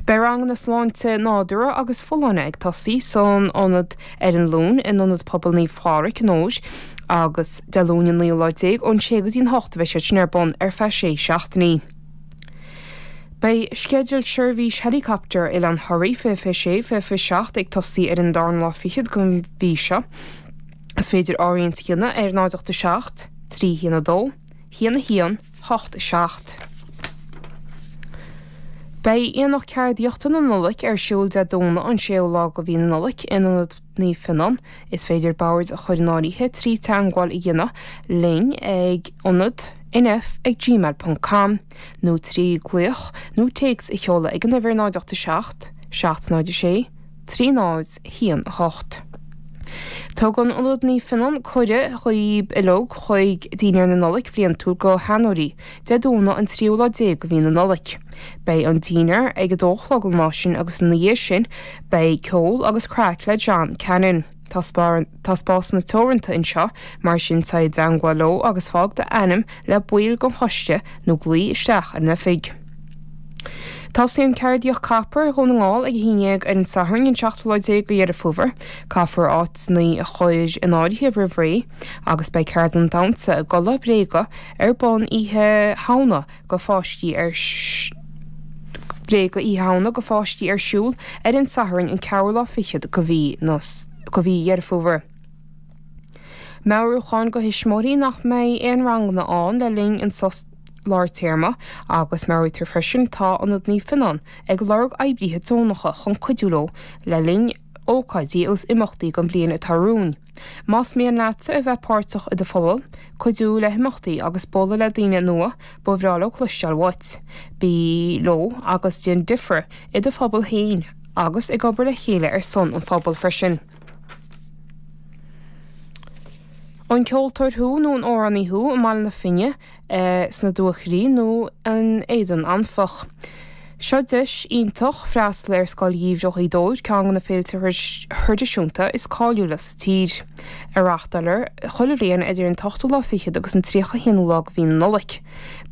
Beidh ranganna sláinte nádúrtha agus folláine ag tosaí san ionad ar an Luan in Ionad Pobail Naomh Pádraig i nDobhar agus Dé Luain an naoú lá déag ón sé go dtí an hocht a bheidh siad sin ar bun ar feadh sé seachtainí. Beidh sceideal seirbhís helicopter Oileán Thoraí 2026, 2027 ag tosaí ar an darna lá fichead den mhí seo. Is féidir áirithint a dhéanamh ar 0 8 7, 3 1 2, 1 1, hocht a seacht. Beidh Aonach Ceardaíochta na Nollag ar siúl Dé Domhnaigh an 6ú lá de mhí na Nollag in Ionad Naomh Fionnán. Is féidir bord a chur in áirithe trí teangmháil a dhéanamh linn ag ionad-nf@gmail.com nó trí glaoch nó téacs a sheoladh ag an uimhir 0 8 7 706 trí náid haon a hocht. Tugann Ionad Naomh Fionnán cuireadh dhaoib uilig chuig Dinnéar na Nollag bliantúil go Sheanóirí, Dé Domhnaigh an tríú lá déag de mhí na Nollag. Beidh an Dinnéar ag a dó a chlog an lá sin agus ina dhiaidh sin beidh ceol agus craic le John Cannon. Tá spásanna teoranta anseo, mar sin téigh i dteangmháil leo agus fág d'ainm le baill den choiste nó glaoigh isteach ar an oifig. Tosaíonn Ceardaíocht Copper Dhún na nGall ag 11:00 ar an Satharn an 17 lá de Dheireadh Fómhair, caithfear áiteanna a chur in áirithe roimh ré, agus beidh ceardlann damhsa i gculaith bhréige ar bun Oíche Shamhna go pháistí ar Bréige Oíche Shamhna go pháistí ar siúl ar an Satharn an ceathrú lá fichead de mhí na de mhí Dheireadh Fómhair. Meabhrúchán go thuismitheoirí nach mbeidh aon ranganna ann le linn an sos lár téarma agus meabhraítear freisin atá Ionad Naomh Fionnán ag lorg oibrithe deonacha chun cuidiú leo le linn ócáidí agus imeachtaí den bhliain atá romhainn. Más mian leatsa a bheith páirteach i do phobal, cuidiú le himeachtaí agus bualadh le daoine nua, ba bhreá leo cloisteáil uait. Bí leo agus déan difear i do phobal féin agus ag obair le chéile ar son an phobail freisin. An ceoltóir thú nó an amhránaí thú i mBaile na Finne, sna Dúchoraidh nó in Éadan Anfach. Seo deis iontach freastal ar Scoil Gheimhridh Ghaoth Dobhair, ceann de na féilte traidisiúnta is cáiliúla sa tír, a reáchtáiltear chuile bhliain idir an t-ochtú lá fichead agus an tríocha haonú lá de mhí na Nollag.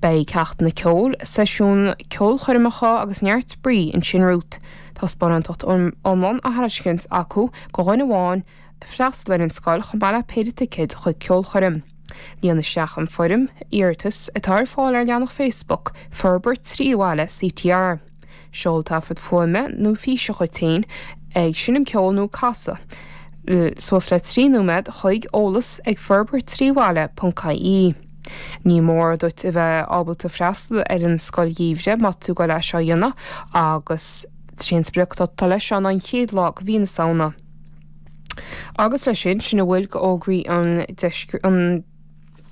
Beidh ceachtanna ceoil, seisiúin, ceolchoirmeacha agus neart spraoi ansin romhat. Tá sparántacht iomlán á thairiscint acu go dhuine amháin, freastal ar an scoil chomh maith le péire ticéad chuig ceolchoirm. Líon isteach an foirm iarratais atá ar fáil ar leathanach Facebook Forbairt Trí Bhaile CTR. Seol taifead fuaime nó físe dhuit féin ag seinm ceoil nó ag casadh, suas le 3 nóiméad, chuig, eolas ag forbairttríbhaile.ie. Ní mór duit a bheith ábalta freastal ar an Scoil Gheimhridh má tá tú ag dul leis seo a dhéanamh agus is é an sprioc atá leis seo ná an chéad lá de mhí na Samhna, Agus leis sin, sin a bhfuil de fhógraí an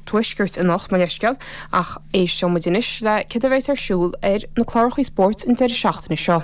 Tuaiscirt anocht mo leithscéal, ach éisteoimid anois le céard a bheas ar siúl ar na clárachaí spóirt an deireadh seachtaine seo.